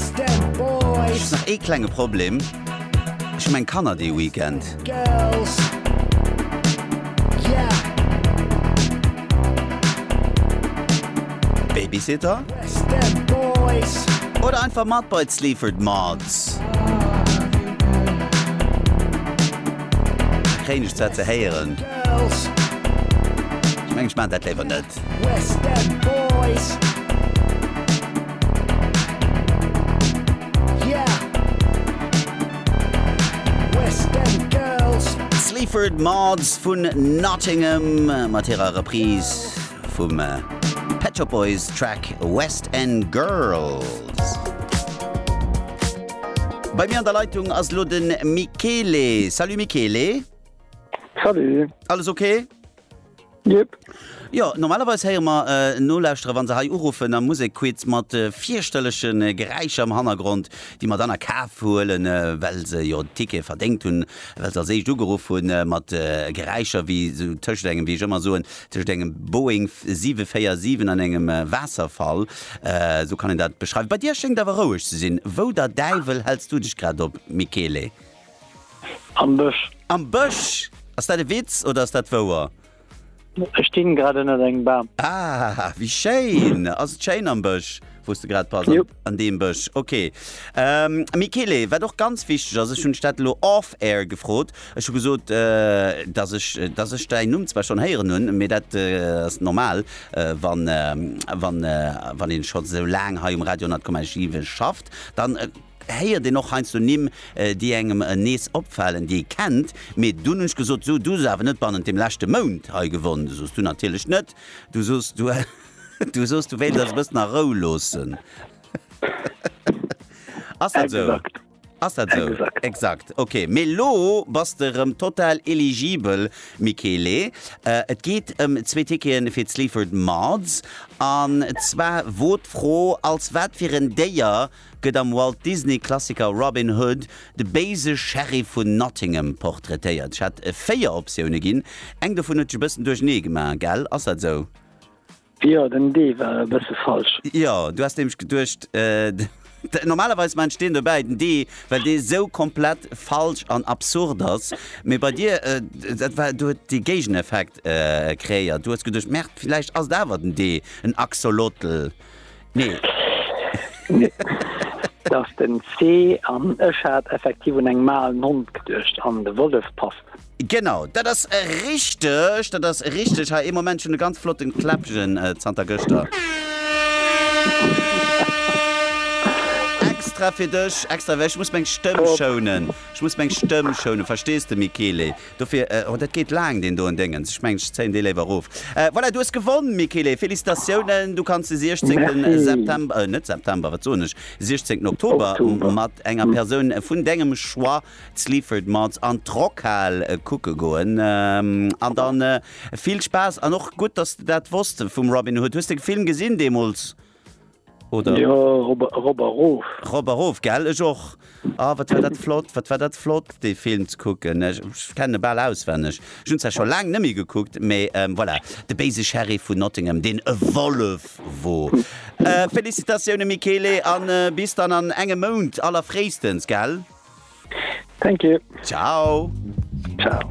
Ech hu nach ee klenge Problem, ech hu meng Kanner dee Weekend. Babysitter? Oder einfach mat bei d'Sleaford Mods? Dat kréien ech zwar ze héieren. Ech mengen ech maachen dat léiwer net. Sleaford Mods vun Nottingham mat hirer Reprise vum äh, Pet Shop Boys Track West End Girls. Bei mir an der Leitung ass lo den Michele. Salut Michele. Salut. Alles okay? Yep. Jo, normalerweis héiere mer Nolauschterer, wa se hei uruffen am Musekquiz, mat fierchterleche Geräischer am Hannergrond, déi mer dann a Kaf huelen, well se jo den Ticket verdéngt hunn, well se als éischt ugeruff hunn, mat Geräischer wéi esou tëschent engem, wéi ech ëmmer soen, tëschent engem Boeing 747 an engem Waasserfall. Esou kann een dat beschreiwen. Bei dir schéngt awer roueg ze sinn. Wou der Däiwel häls du dech grad op, Michele? Am Bësch. Am Bësch! Ass dat e Witz oder ass dat wouer? Ech stinn grad ënnert engem Bam. Ah, wéi schéin! Ass et schéin am Bësch, wou s de grad bass? Jop. An deem Bësch, ok. Michele, wat och ganz wichteg ass, ech hunn dech dat elo off air gefrot, ech hu gesot, datt ech, datt ech däin Numm zwar schonn héieren hunn, mee dat ass normal, wann, wann, wann een scho sou laang hei um Radio 10,7 schafft, dann, héiert een och heiansdo Nimm, déi engem nees opfalen, déi ee kennt, mee dunn hunn ech gesot, So, du hues awer net bannent dem leschte Mount hei gewonn. Du sos, Du natierlech net. Du sos, Du, du sos, du wéilt eis e bëssen a Rou loossen. Ass dat esou? Exakt. Ass dat esou? Exakt. Exakt. Ok, mee elo bass de erëm total eligibel, Michele. Et geet ëm zwee Ticketen fir d'Sleaford Mods. An zwar wor d'Fro, als wat fir en Déier gëtt am Walt-Disney-Klassiker Robin Hood de béise Sheriff vun Nottingham portraitéiert. Ech hat 4 Optioune ginn, eng dovun huet dech e bëssen duerchenee gemaach, gell? Ass dat esou? Jo, den D war e bësse falsch. Jo, du has nämlech geduecht, de, normalerweis maachen ech deen dobäi, den D, well dee sou komplett falsch an absurd ass. Mee bei dir, dat war, du huet dee Géigeneffekt kreéiert. Du hues geduecht, Merde, villäicht ass et awer den D, en Axolotl. Nee. Et ass den C, an ech hat effektiv un eng Maal Nonnt geduecht an de Wollef passt. Genau, dat ass richteg, dat ass richteg. Hei, ee Moment, ech hunn e ganz flotten Kläppchen zanter gëschter extra fir dech, extra, well ech muss meng Stëmm schounen, ech muss meng Stëmm schounen, verstees de Michele? Dofir, oh dat geet laang deen doen Déngens, ech mengen ech zéien dee léiwer erof. Voilà, du hues gewonn Michele, Félicitatiounen, du kanns de 16 September, euh net September, wat soen ech, 16 Oktober mat enger Persoun vun dengem Choix d'Sleaford Mods an d'Rockhal kucke goen an dann vill Spaass an och gutt dass de dat wosst vum Robin Hood. Hues de Film gesinn deemools? Oder? Jo, rob, rob a rof. Rob a rof, gell? Ech och. Ah, wat war dat flott, wat war dat flott, dee Film ze kucken. Ech kenne e bal auswenneg. Ech hunn zwar scho laang net méi gekuckt, mee ähm, voilà. De béise Sheriff vun Nottingham, deen e Wollef wor. Äh, Felicitatioune Michele an äh, bis dann an engem Mount allerfréistens, gell? Thank you. Ciao. Ciao.